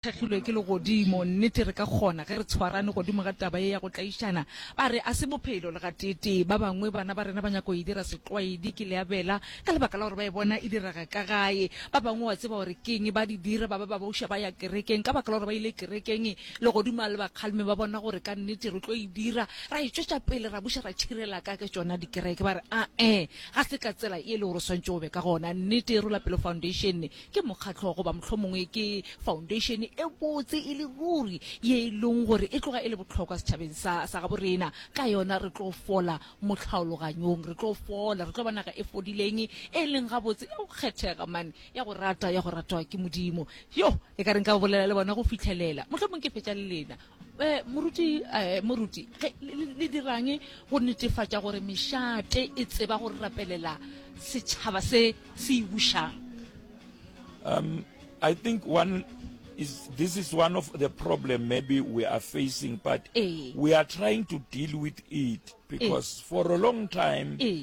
thekgilwe ke legodimo. Nnete, re ka kgona, ge re tshwarane godimo ga taba ye ya go tlaišana. Ba re, A se Bophelo, le gateetee. Ba bangwe, bana ba rena ba nyaka go e dira setlwaedi, ke leabela, ka lebaka la gore ba e bona e direga ka gae. Ba bangwe, wa tseba gore ke eng, ba di dira, ba ba ba boša ba ya kerekeng, ka baka la gore ba ile kerekeng, legodimo a le ba kgalme, ba bona gore ka nnete re tlo e dira. Ra e tšwetša pele, ra buša ra tšhirela ka ke tšona dikereke. Ba re, A-e, ga se ka tsela ye e lego gore o swanetše go be ka gona. Nnete e rola pelo foundeišene. ke mokgatlo goba mohlomongwe ke foundation e botse e le ruri ye e leng gore e tloga e le bohlokwa setšhabeng sa sa gabo rena ka yona re tlo fola motlhaologanyong re tlo fola re tlo ba naga e fodileng e leng gabotse e go kgethega man ya go rata ya go ratwa ke modimo yo e ka reng ka bolela le bona go fitlhelela mohlomongwe ke fetša le lena Eh, moruti eh, moruti ge le- le le dirang go netefatša gore mešate e tseba go rapelela setšhaba se se e bušang Um, I think one is this is one of the problem maybe we are facing, but Eh. we are trying to deal with it because for a long time Eh.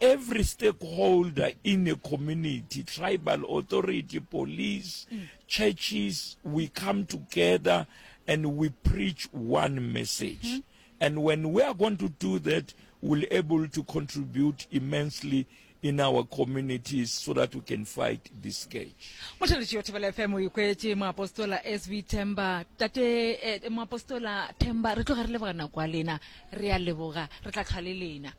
Every stakeholder in a community, tribal authority, police, mm. churches, we come together and we preach one message. Mm -hmm. And when we are going to do that, we'll able to contribute immensely in our communities so that we can fight this scourge. Mohlaloši yo Thobela FM o ikwetše moapostola SV Themba tate eh, moapostola Themba re tloga re leboga nako ya lena re a leboga re tla tlhwa le lena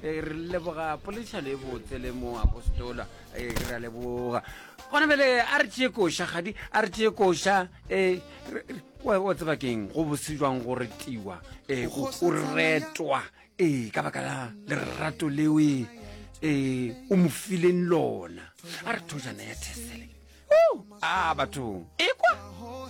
Eh, re leboga poledišano e botse le mo apostola eh, re a leboga gona bele a re tšee koša gadi a re tšee koša eh, um wa tseba keng go bose jwang go retiwa um o retwa ee ka baka la lerato leo e um o mo fileng lona a re thojana ya thesele a bathong ekwa